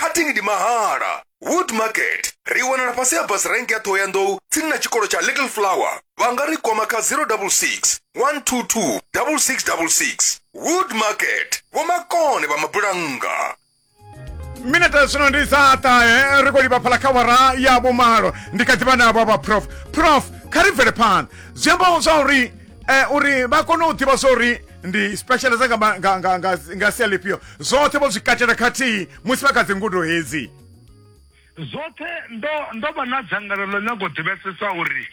cutting ndi mahala wood market ri wanala fhasi ha bus rank ya ṱhohoyanḓou tsini na tshikolo tsha little flower vha nga ri kwama kha 066 122 6666 wood market vhomakone vha mabulannga minete zwino ndi dza ṱahe ri khou livha phala kha wara ya vhumalo ndi kha ḓivha navho vha prof prof kha ri bvele phanḓa zwi amba zwa uri eh, uri vha kone u ḓivha zwa uri ndi specialize nga, ma- nga, nga, nga, nga sia lifhio zwoṱhe vho zwi katela khathihi musi vha kha dzi ngudo hedzi zwoṱhe ndo ndo vha na dzangalelo nyago u ḓivhesesa uri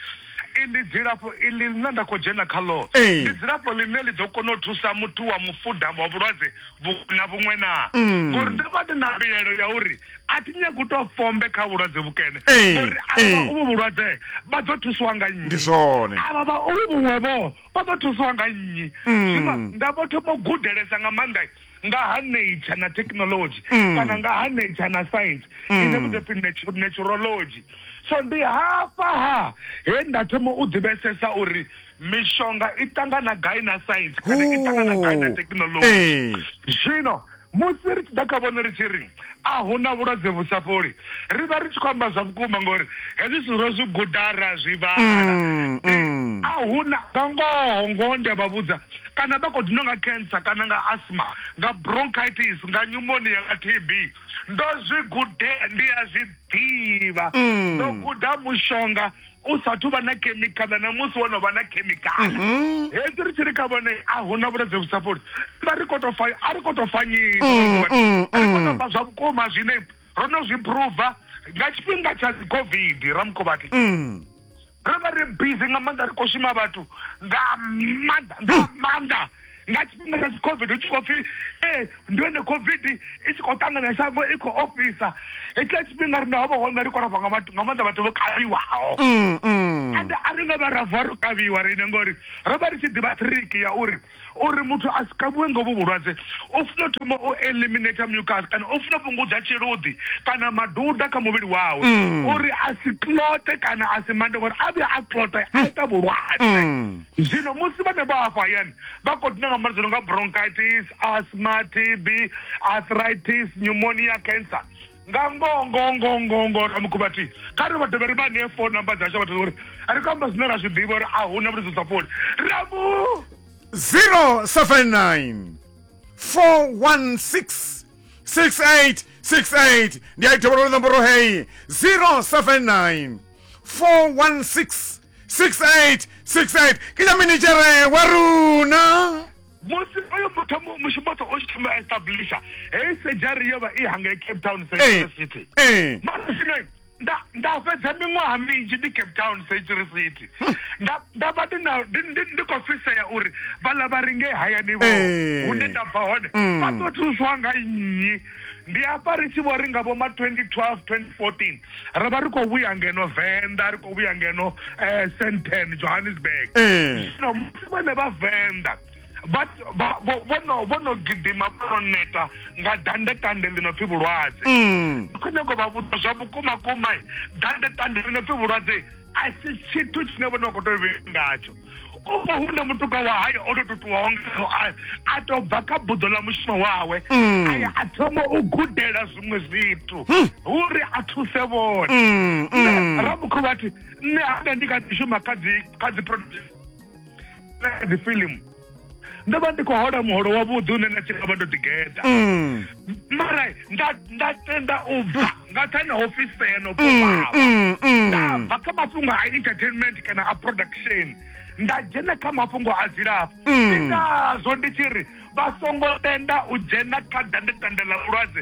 ndi dzilafho iḽi ḽine nda khou dzhena khaḽo Ee. ndi dzilafho ḽine ḽi ḓo kona u thusa muthu wa mufuda wa vhulwadze vhu- na vhuṅwe na ngori ndo vha ndi na mbilaelo ya uri a thi nyagi u tou fombe kha vhulwadze vhukene Ee, ngori avha ee. vha uvhu vhulwadze vha ḓo thusiwa nga nnyi ndi zwone avha vha uvhu vhuṅwe vho vha ḓo thusiwa nga nnyi Mm. zwino nda vho thoma u gudelesa nga maanḓa nga ha nature na technology Mm. kana nga ha nature na science Mm. ine vhu ḓo pfi natu- naturology so ndi hafha ha he nda thoma u ḓivhesesa uri mishonga i ṱangana gai na science kana i ṱangana gai na Hoo. technology Ee. zwino Musi ri tshi ḓa kha vhone ri tshi ri, A hu na vhulwadze vhu sa fholi, ri vha ri tshi khou amba zwa vhukuma ngauri hezwi zwithu ro zwi guda ra zwi vhala. A hu na. Nga ngoho, ngoho ndi a vha vhudza, kana vha khou dinwa nga cancer kana nga asthma, nga bronchitis, nga pneumonia, nga TB, ndo zwi gudea, ndi a zwi ḓivha, ndo guda mushonga u sathu vha na khemikhala na musi wo no vha na khemikhala mhm. hedzi ri tshi ri kha vhone a hu na vhulwadze vhu sa fholi vha ri koto fa a ri koto fanyisa mm, mm, ri koto mm. fa zwa vhukuma zwine ro no zwi pruva nga tshifhinga tsha dzi covid ramukhovhati ro vha ri busy nga maanḓa ri khou shuma vhathu nga maanḓa nga maanḓa nga tshifhinga tsha covid hu tshi khou pfhi ee eh, ndi hone covid i tshi khou ṱangana shango i khou ofhisa hetshiḽa tshifhinga rine ho vha hone ri khou rava nga maanḓa vhathu vho kavhiwaho mm, mm. ende a ri nga vha rava ro kavhiwa rine ngori ro vha ri tshi ḓivha triki ya uri uri muthu a si kavhiwe ngo vhu vhulwadze u funa thoma u eliminata mucas kana u funa fhungudza tshiluḓi kana maduda kha muvhili wawe mm. uri a si clote kana a si mande ngori a vhuya a clote a ita vhulwadze Zwino musi vhanevho hafha hayani vha khou dina nga malwadze a no nga bronchitis, asthma, TB, arthritis, pneumonia, cancer, nga ngoho ngoho ngoho ngoho ngoho Ramukhuvha a thi kha ri vha dovhe ri vha ṋee phone number dzashu a vha tea uri ri khou amba zwine ra zwi ḓivha uri a hu na vhulwadze dza fholi Ramu 079 416 6868 ndi a i dovholola nomboro heyi 079 416 68 68 ke ja minichere wa rona musi oyo muthu mu- mushumoto o tshi thoma a establisha heyi sejari yo vha i hangei cape town Eh, central city eh. mara zwino nda- nda fhedza miṅwaha minzhi ndi cape town century city Nda- nda vha ndi na- ndi- ndi- ndi khou fhisea uri vhaḽa vha ri ngei hayani vho Eh. hune nda bva hone Mm. vha ḓo thuswa nga nnyi ndi afha ri tshi vho ri nga vho ma 2012 2014 ro vha ri khou vhuya ngeno venḓa ri khou vhuya ngeno um senten johannesburg eh. zwino musi vhone vha venḓa vho no gidima vho no neta nga dandekande ḽi no pfi vhulwadze mm. kho nyago vha vhuḓa zwa vhukuma kuma dandekande ḽi no pfi vhulwadze a si tshithu tshine vho no khou tou vhe ngatsho o vha hu na mutuka wa hayo o to tutuwaho ngao a to bva kha buḓo ḽa mushumo wawe mm. aya a thoma u gudela zwiṅwe zwithu hmm. uri a thuse vhone mm, mm. rabukho vhathi nṋe hanga ndi kha ḓi shuma kha dzi kha dzi production kha dzi filimu ndo vha ndi khou hola muholo wavhuḓi une na tshi nga vha ndo ḓigeḓa Mm, mara nda nda tenda u bva nga thani ha ofisa ya no mm, fhufhava mm, mm. ndabva kha mafhungo a entertainment kana a production nda dzhena kha mafhungo a dzilafho Mm. ndi ngazwo ndi tshi ri vha songo tenda u dzhena kha dandetanda ḽa vhulwadze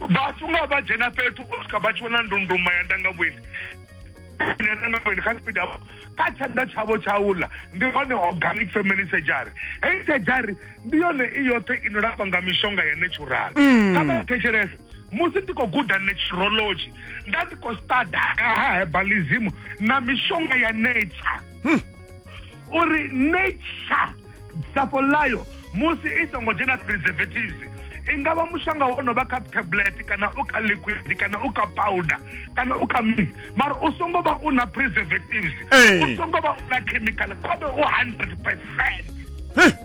vhathu nga vha dzhena fhethu u swika vha tshi vhona ndunduma ya ndangavhuendi ya ndangavhuendi kha tshipiḓa kha tshanḓa tshavho tsha uḽa ndi hone organic family surgery heyi surgery ndi yone i yoṱhe ino lafha nga mishonga ya natural mm. kha vha thetshelese musi ndi khou guda naturology nda ndi khou stada ha herbalism na mishonga ya nature hmm. uri nature dzafho ḽayo musi i songo dzhena preservatives i nga vha mushonga wo no vha kha tablet kana u kha liquid kana u kha powder kana u kha mini mara u songo vha u na preservatives u songo vha u na chemical khovhe u hundred percent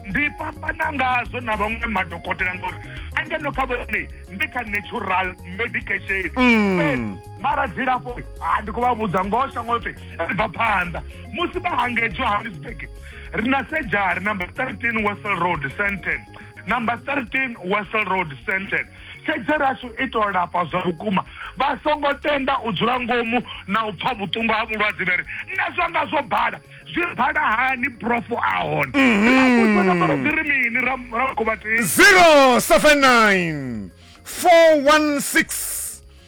ndi fhambana ngazwo na vhaṅwe madokotela ngori angeno kha vhone ndi kha natural medication mm. mara dzilafho ha ndi khou vha vhudza ngoho shango ḽoṱhe ri bva phanḓa musi vha hangei johannesburg ri na sejari number 13 wessel road senten number 13 wessel road senten sejari ashu i tou lafha zwa vhukuma vha songo tenda u dzula ngomu na u pfha vhuṱungu ha vhulwadze vheri nṋe zwanga zwo bala zwi bala hani profo a hone ri ri mini ra ra khuvhatei 079 416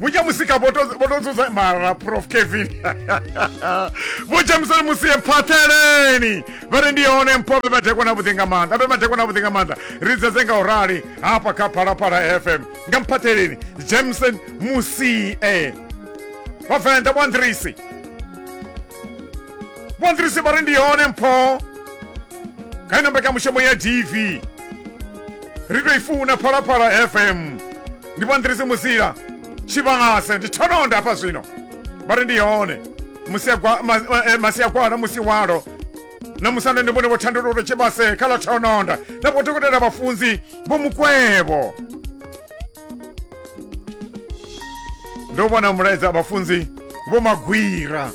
vho tsha musika vho to vho to dzudza mara prof kevin vho tsha musana musi ye phatheleni vha ri ndi hone mpho be madekwa na vhuḓi nga maanḓa be madekwa na vhuḓi nga maanḓa ri dzedze nga u rali hafha kha phalaphala fm nga mphatheleni jameson musie vhavenḓa vho andrisi vho andrisi vha ri ndi hone mpho kha ino mbekamushumo ya dv ri to i funa phalaphala fm ndi vho nḓirisi musila tshivhase ndi thononda hafha zwino vha ri ndi hone eh, masiagwala musi walo na musanda ndi vhone vho thandululo tshivhase kha ḽa thononda na vho dokotela vhafunzi vho mukwevho ndo vhona mulaedza vhafunzi vho magwira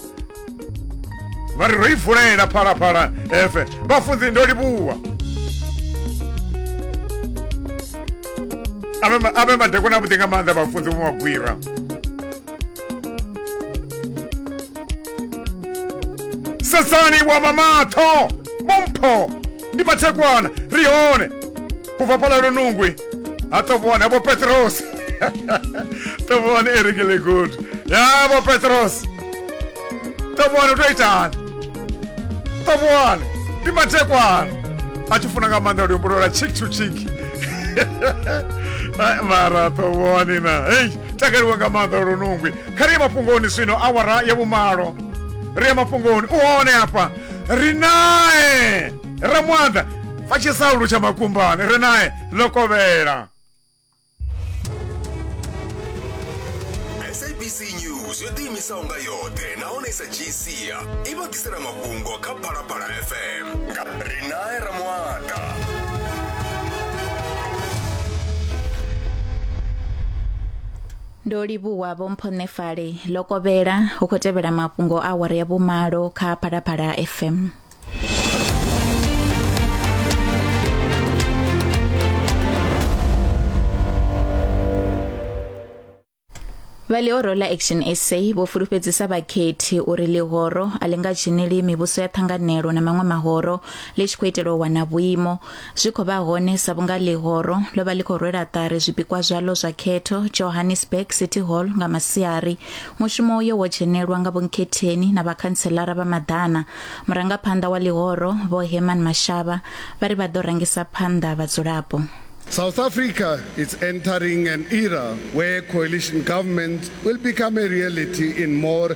vha ri ro i vulela phalaphala efe vhafunzi ndo livhuwa ave madekwana avhuḓi nga maanḓa vhafunzi vho magwira sesani wa mamatho mumpho ndi mathekwana ri hone ku bva phalalo nungwi ha tovhone vho petrosi tovhone erekele gudu ya vho petrosi tovhone u to itani tovhone ndi mathekwana a tshi funa nga maanḓa luimbo lwa chick to chick Ai, mara tovhone na hei takaliwa nga maanḓa lwa lunungwi kha ri ye mafhungoni swino awara ya vhumalo ri ye mafhungoni u hone hafha ri nae ramwanda fa tshisaulu tsha makumbane ri nae ḽo kovhela sabc news yo ḓiimisaho nga yoṱhe nahone sa gca i vha ḓisela mafhungo kha phalaphala fm nga ri nae ramwanda Ndo livhuwa Vho Mpho Nefale. Ḽo kovhela, hu khou tevhela mafhungo a awara ya vhumalo kha Phalaphala FM. vha ḽihoro ḽa action sa vho fulufhedzisa vhakhethi uri ḽihoro a ḽi nga dzheneli mivhuso ya ṱhanganelo na maṅwe mahoro ḽi tshi khou itela u wana vhuimo zwi khou vha hone sa vhunga ḽihoro ḽo vha ḽi khou rwela ṱari zwipikwa zwaḽo zwa khetho johannesburg city hall nga masiari mushumo uyo wo dzhenelwa nga vhonkhetheni na vhakhantselara vha maḓana murangaphanḓa wa ḽihoro vho herman mashava vha ri vha ḓo rangisa phanḓa vhadzulapo South Africa is entering an era where coalition governments will become a reality in more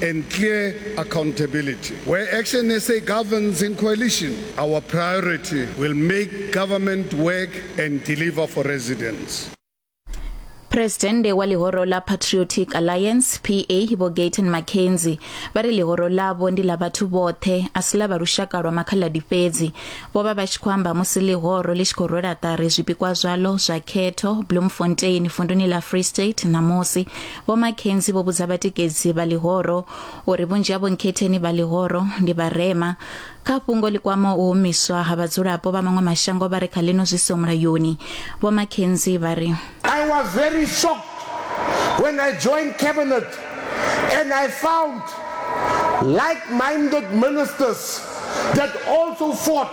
and clear accountability. Where Action SA governs in coalition, our priority will make government work and deliver for residents. Presidente wa lihoro la Patriotic Alliance PA Vho Gayton McKenzie vha ri lihoro ḽavho ndi ḽa vhathu vhoṱhe a si ḽa vha lushaka lwa makhaladi fhedzi vho vha vha tshi khou amba musi lihoro ḽi tshi khou rwela ṱari zwipikwa zwaḽo zwa khetho Bloemfontein vunduni ḽa Free State ṋamusi Vho McKenzie vho vhudza vhatikedzi vha ḽihoro uri vhunzhi ha vhonkhetheni vha ḽihoro ndi vharema. Kha fhungo ḽi kwamaho u humiswa ha vhadzulapo vha maṅwe mashango vha re kha ḽino zwi siho mulayoni, Vho McKenzie vha ri, I was very shocked when I joined cabinet and I found like-minded ministers that also fought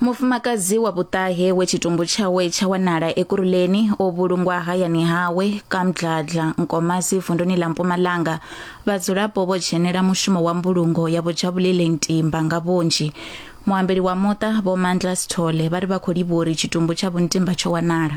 mufumakadzi wa vhuṱahe we tshitumbu tshawe tsha wanala ekuruleni o vhulungwa hayani hawe kamdladla nkomasi vunduni ḽa mpumalanga vhadzulapo vho dzhenela mushumo wa mbulungo ya vhojabulele ntimba nga vhunzhi muambeli wa muṱa vho mandla sithole vha ri vha khou livha uri tshitumbu tsha vhuntimba tsho wanala